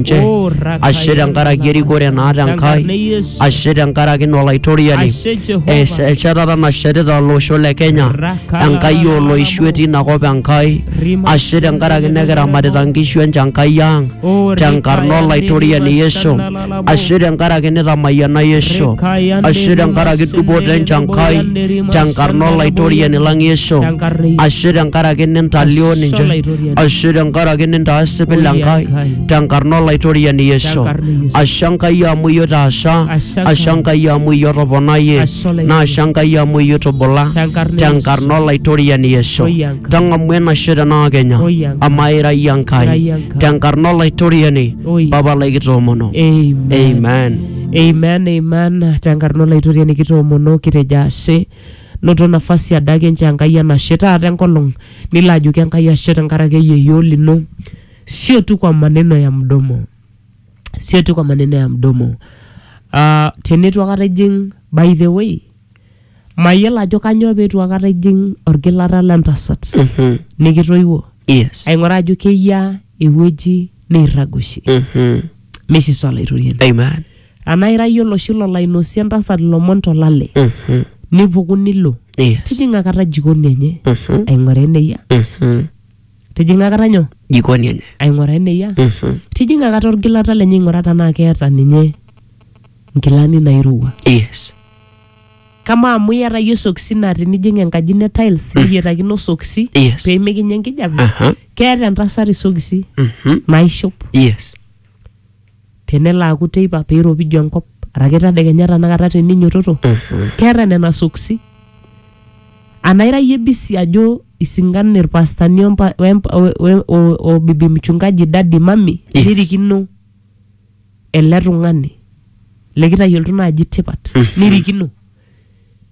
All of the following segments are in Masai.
nche ashe tenkaraki erikore naata enkai ashe tenkaraki ina olaitoriani eshetata nashetita olosho le kenya enkai oloishu etii inakop enkai ashe tenkaraki nekiramatita nkishu enche enkai ang tenkarna olaitoriani yesu ashe tenkaraki nitamayiana yesu ashe tenkaraki dupoto enche enkai tenkarna olaitoriani lang yesu ashe tenkaraki nintalio ninche ashe tenkaraki nintaasa pila Enkai tenkarna olaitoriani Yesu ashe Enkai amu iyie otaasa ashe Enkai amu iyie otoponayie naashe Enkai amu iyie otubula tenkarna olaitoriani Yesu tang'amu enashe tenaa kenya amaa ira iyie Enkai tenkarna olaitoriani papa lai kitoomono amen amen amen tenkarna olaitoriani kitoomono kitejo ashe Noto nafasi adake nchoo Enkai enashe taata enkolong nilo ajoki Enkai ashe tenkaraki eyieyio lino. Sio tu kwa maneno ya mdomo, sio tu kwa maneno ya mdomo. Ah, teneitu akata ijing by the way, mayiolo ajo kanyoo peitu akata ijing olgilata le ntasat Mhm. nikitoiwuo Yes. aing'uraa ajo keyiaa ewueji neirrag oshi. Mhm. Meisisa olaitoriani. Amen. anaa ira iyie oloshi lolo ainosie entasat ilomon tolale Mhm. nipuku nilo Yes. tijing'a kata jikoni enye Mhm. aing'oraa eneyia Mhm. tijing'a kata nyoo jikoni enye aing'oraa eneyia Mhm. tijing'a kata orgilata lenye aing'oraa tenaa keeta ninye nkilani nairowua yes kama amu iyata iyie sokisi naa tinijing enkaji ne tiles niyetakino sokisi Yes. pee mikinya enkijape aha keeta entasat isokisi Mhm. naishop yes tenelo aaku teipa pee eiropiju enkop araki tadekenya tanakata teninyototo keeta nena soksi anaa ira iyie bisi ajo isingan irpastani ompa- wempa- we- we- o- o bibi mchungaji dadi mami Yes. nirikino ele tung'ani likitayiolto naaji tipat nirikino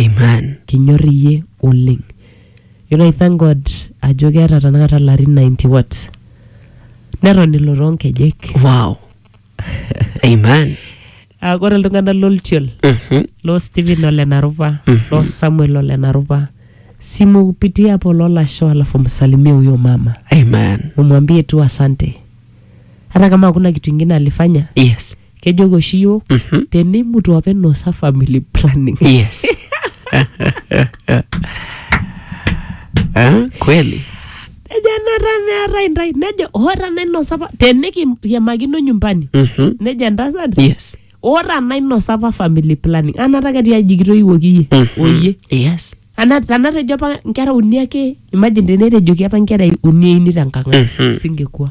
Amen. kinyor iyie oleng you know, I thank God ajo keeta tanakata larin 90 what neton ilo toonkejek Wow. Amen. Ah, ore iltung'anak loltiol Mhm. loo Stephen ole Narupa loo Samuel ole Narupa simupitia hapo lolasho alafu msalimie huyo mama Amen. umwambie tu asante hata kama hakuna kitu ingine alifanya Yes. kejoki oshi yiok Mhm. tenimutu apa inosa family planning yes Eh, kweli nejo enata meeta intae nejo ora nainosa apa tenikiriamakino nyumbani Mhm. nejo entasat yes ora nainosa apa family planning anata ketii aji kitoiwuoki iyie Mhm. oyie yes Ana- tanatejo apa nkera uni ake imagine tenetejoki apa nkera uni eini tenkang ai Mhm. singekuwa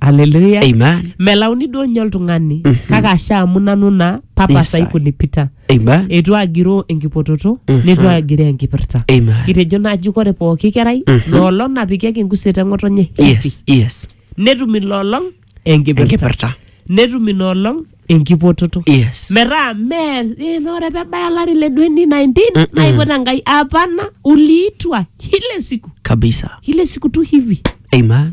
haleluya Amen. melauni duo nye oltung'ani kake asha amu nanu naa papa Yes, sai I. kunipita Amen. eitu agiroo enkipototo neitu agiroo enkipirta Amen. kitejo naaji kore pooki kerai loolong napikieki enkuset eng'otonye Yes, yes. netum iloolong enkipirta Enkipirta. netum inoolong enkipototo Yes. metaa mee eh, mee ore pebaya olari le 2019 naipota nkai apana uliitwa ile siku Kabisa. ile siku tu hivi Amen.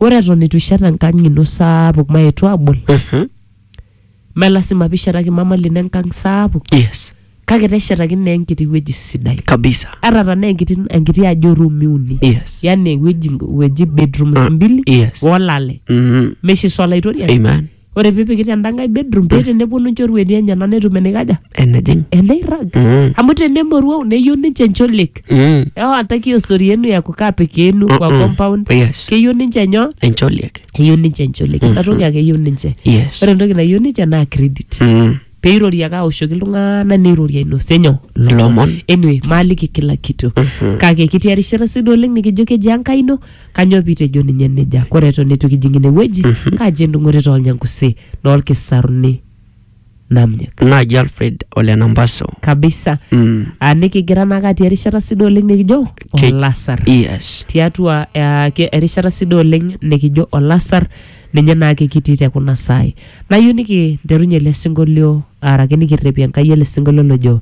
ore eton eitu ishet enkang ino saapuk maetu abol Mhm. me lasima pishetaki mama lino enkang saapuk yes kake teshetaki naa enkiti wueji sidai kabisa ata tanaa enkiti, enkiti aji orumi uni yes yani ewueji, ewueji bedrooms mbili yes olale Mhm. meshiso olaitoriani amen ore pipiki tenda nkae bedroom pee teneponu nchorueti enyena netum enikaja enejing eneirrag Mm. amu tenemoruau neyieu ninche ncholik Mm. ewa ataki osori yenu ya kukaa peke yenu kwa Mm-mm. compound Oh, yes keyieu ninche nyoo encholiek eyieu ninche ncholik inatoki ake eyieu ninche yes ore entoki nayieu ninche naa credit Mm. peirori ake aoshoki iltung'anak neirori ainosie nyoo Lomon. anyway maaliki kila kitu kake kitii erishata sii duo oleng nikijo keji enkai ino kanyoo piitejo ninye nejia kore eton eitu kijing ine wueji kaji endung'oto toolnyangusi noolkisaruni namnyek Naaji Alfred ole Nambaso. kabisa Mm. Ah, nikigira naake atii erishata sii duo oleng nikijo Ke- olasar Yes. tiatua eh, ke- erishata sii duo oleng nikijo olasar Ninye naake kitii te kuna saai. Nayeu nikinterunye ele singolio araki nikirrepie Enkai ele singolio lojo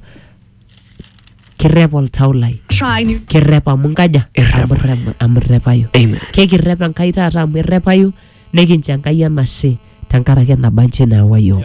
kirrep oltau lai. Try new. Kirrep amu nkaja? Amu irrep- amu irrepayu. Amen. Kekirrep Enkai taata amu irrepayu nikincho Enkai enashe tenkaraki enaba nchi naawa iyiok.